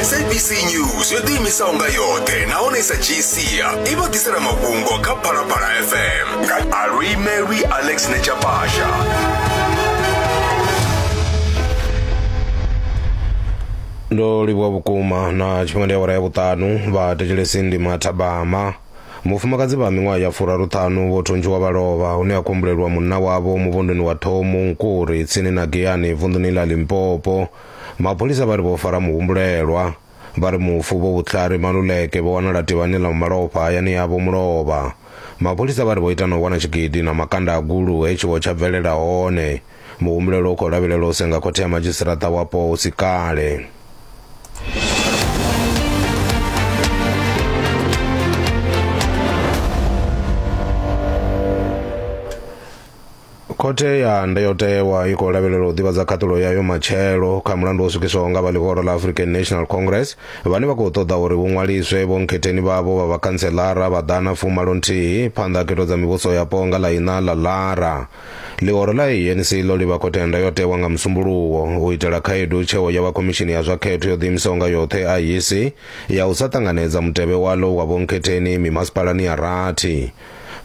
sabc news yo ḓiimisaho nga yoṱhe nahone i sa dzhii sia i vha ḓisela mafhungo kha phalaphala fm nga aluimelwi alex nechapasha ndo livhuwa vhukuma na tshifhinga ndi awara ya vhuṱanu vha thetshelesi ndi mathabama Vhufumakadzi vha miṅwaha ya furaruṱhanu vho thuntshiwa vha lovha hune ha khou humbulelwa munna wavho muvhunduni wa Thomu Nkuri tsini na Giyani vunḓuni ḽa Limpopo. Mapholisa vha ri vho fara muhumbulelwa. Vha ri mufu Vho Vutlhari Maluleke vho wanala tivhani ḽa malofha hayani yavho mulovha. Mapholisa vha ri vho ita na u wana tshigidi na makanda a gulu he tshiwo tsha bvelela hone. muhumbulelo u khou lavhelelwa u senga khothe ya madzhisiṱiraṱa wapo hu si kale khothe ya ndayotewa i khou lavhelela u ḓivhadza khaṱulo yayo matshelo kha mulandu wo swikiswaho nga vha ḽihoro ḽa african national congress vhane vha khou ṱoḓa uri vhu ṅwaliswe vhonkhetheni vhavho vha vhakhanselara vha ḓana fumalo nthihi phanḓa ha khetho dza mivhuso yapo nga ḽa iṋa ḽa lara Ḽihoro ḽa ANC ḽo livha khothe ndayotewa nga musumbuluwo u itela khaedu tsheo ya vha khomishini ya zwa khetho yo ḓiimisaho nga yoṱhe IEC ya u sa ṱanganedza mutevhe walo wa vhonkhetheni mimasipalani ya rathi.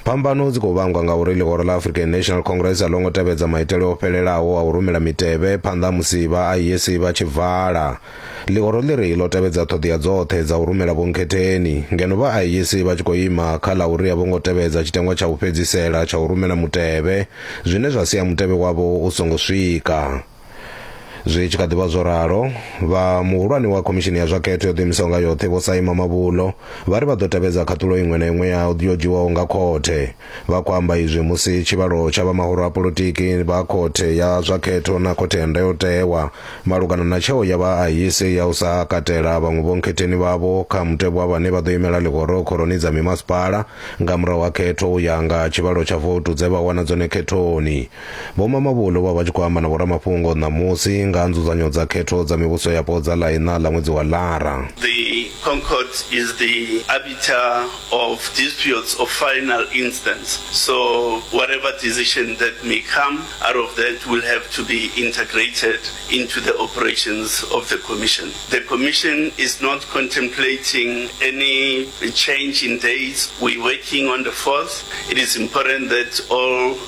Phambano dzi khou vhangwa nga uri ḽihoro ḽa African National Congress a ḽo ngo tevhedza maitele o fhelelaho a u rumela mitevhe phanḓa musi vha IEC vha tshi vala. Ḽihoro ḽiri ḽo tevhedza ṱhoḓea dzoṱhe dza u rumela vhunkhetheni, ngeno vha IEC vha tshi khou ima kha ḽa uri a vho ngo tevhedza tshiteṅwa tsha u fhedzisela tsha u rumela mutevhe, zwine zwa sia mutevhe wavho u songo swika. Zwi tshi kha ḓi vha zwo ralo, vha muhulwane wa Khomishini ya zwa Khetho yo Ḓiimisaho nga Yoṱhe, Vho Saima Mabulo, vha ri vha ḓo tevhedza khaṱulo iṅwe na iṅwe ya yo dzhiwaho nga khothe. Vha khou amba izwi musi tshivhalo tsha vha mahoro a polotiki vha khothe ya zwa khetho na khothe ya ndayotewa malugana na tsheo ya vha ahise ya u sa katela vhaṅwe vhonkhetheni vhavho kha mutevhe wa vhane vha ḓo imela ḽihoro khoroni dza mimasipala nga murahu ha khetho u ya nga tshivhalo tsha votu dze vha wana dzone khethoni. Vho Mamabolo vha vha tshi khou amba na vhoramafhungo ṋamusi nga ha nzudzanyo dza khetho dza mivhuso yapo dza ḽa iṋa ḽa ṅwedzi wa Lara. The Concord is the arbiter of disputes of final instance so whatever decision that may come out of that will have to be integrated into the operations of the Commission. The Commission is not contemplating any change in dates, we're working on the fourth, it is important that all.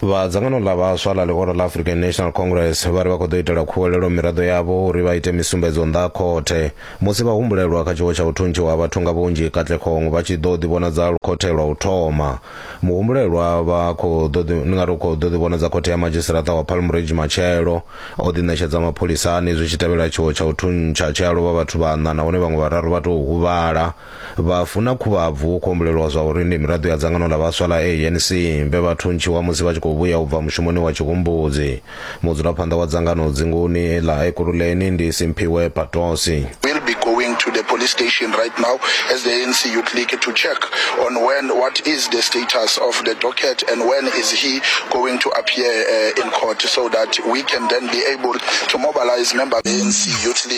Vha dzangano ḽa vhaswa ḽa ḽihoro ḽa African National Congress vha ri vha khou ḓo itela khuwelelo miraḓo yavho uri vha ite misumbedzo nnḓa ha khothe musi vhahumbulelwa kha tshiwo tsha u thuntshiwa ha vhathu nga vhunzhi Katlehong vha tshi ḓo ḓivhonadza khothe lwa u thoma. Muhumbulelwa vha khou ḓo ḓi, ndi nga ri u khou ḓo ḓivhonadza khothe ya madzhisiṱaṱa wa Palm Ridge matshelo, o ḓiṋetshedza mapholisani zwi tshi tevhela tshiwo tsha u thuntsha tshe a lovha vhathu vhaṋa nahone vhaṅwe vhararu vha tou huvhala. Vhafu na Khuvhabvu hu khou humbulelwa zwa uri ndi miraḓo ya dzangano ḽa vhaswa ḽa ANC vhe vha thuntshiwa musi vha tshi khou vhuya u bva mushumoni wa Tshihumbudzi. Mudzulaphanḓa wa dzangano dzinguni ḽa Ekurhuleni ndi Simphiwe Patosi. We'll be going to the police station right now as the ANC Youth League to check on when what is the status of the docket and when is he going to appear in court so that we can then be able to mobilise members ANC Youth League.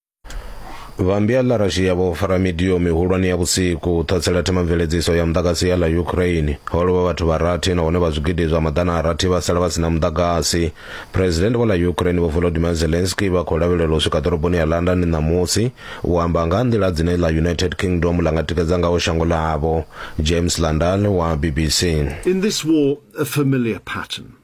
vhambi a larashia vho fara midio mihulwane ya vhusiku u ṱhatsela themamveledziso ya muḓagasi ya ḽa ukraine ho lovha vhathu vha rathi nahone vha zwigidi zwa maḓana a rathi vha sala vha si na muḓagasi president vho ḽa ukraine vho volodimir zelensky vha khou lavhelela u swika ḓoroboni ya london ṋamusi u amba nga nḓila dzine ḽa united kingdom ḽa nga tikedza ngaho shango ḽavho james landal wa bbc In this war, a familiar pattern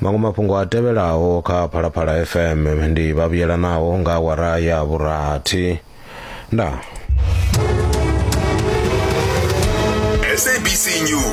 maṅwe mafhungo a tevhelaho kha phalaphala fm ndi vhavhuyelanaho nga awara ya vhurathi ndaa sabc news